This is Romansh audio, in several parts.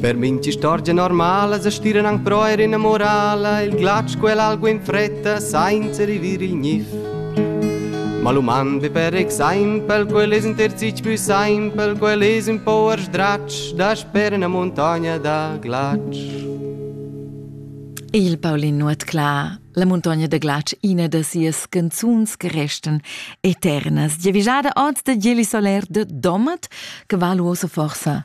Per mintg'istorgia normala sa stiran anc però er ina morala il glatsch quell'algu in fretta sainza rivir il gnif. Ma l'uman vi per exempel, quel es in terzich più simpel, quel es un po sdratsch, dasper una montagna da glatsch. Il Paulin Nuotcla, la muntogna da glatsch, ina da sias canzuns che restan eternas, giavischada oz da Geli Soler de Domat, che va luoso forsa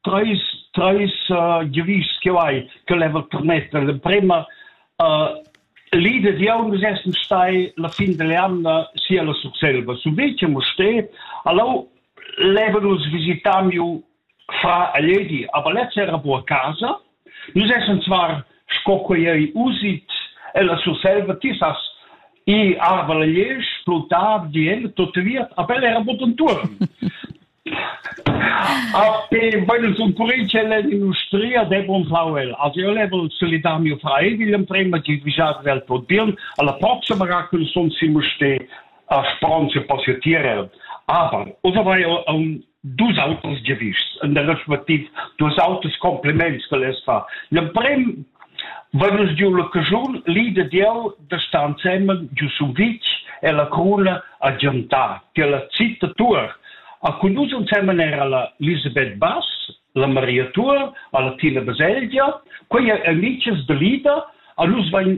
treis treis uh, giuvists che vai che level permetter l'emprema uh, l'idea di aun essen stai la fin dell'anno sia la succelba su vece mo ste allo level us visitamiu fra aledi aber letz era bu casa nus essen zwar sco quei usit e la succelba ti sas i arva la iesch plutar di en tot viet a bel era boton turn Arte, bueno, sun current ch'el es in ustria, de bon fau el. Also io le vol solidar mio frai William prima che vigiar vel tot bien. Alla prossima ra cun son simu ste a Span se positier. Aber, usa vai um dus autos gewichts, in der respectiv dus autos compliments che les fa. L'emprim Vanus giu la cajun li de Dieu de stanzemen giu su vic e la cruna a giantar, che la citta tuer A cun nus ensemen era la Elisabeth Bass, la Maria Tuor, a la Tina Baselgia. Quei ei amichas da Lida. A nus vain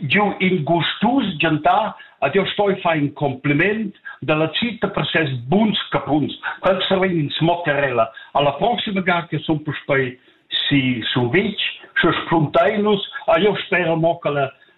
giu in gustus gentar. Ad io stoi far in compliment dalla cita per ses buns capuns. Quels sarein in smocarella. Alla prossima ga che sun puspei si survitg, sche spuntai nus. A io spera mo che la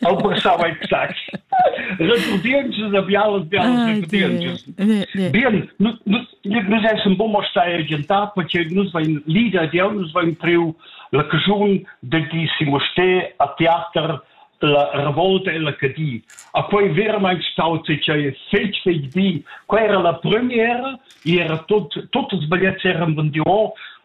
Eu pensava exact. Recudientschas da bialas, bialas recudientschas. Bien, nus essem bon a stai agientar perché nus vain leader dieu, nus vain priu la caschun da gi simo ste a teater la revolta e la cadi. A quei vermain staut se che fetg fetg di, quei era la premiera, era tot tot els bagliets eran vendiu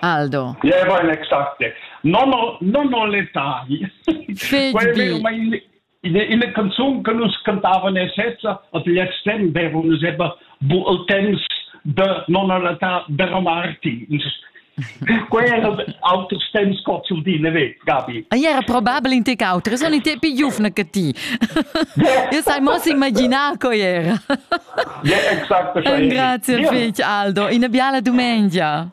Aldo. Ja, vai l'exact. No, no, no, no letagli. Quel ma in, in canzun che nus cantavan e sezza, ad gli tempo avevano sempre bu il temps de nonna Lata de Romarti. Quei era auters temps cozul di, ne ve, Gabi. Ah, era probabile in te cautre, sono i tempi giufna che ti. Io sai mo si immaginare co era. Ja, exakt. Grazie, fich, Aldo. Una biala domenica.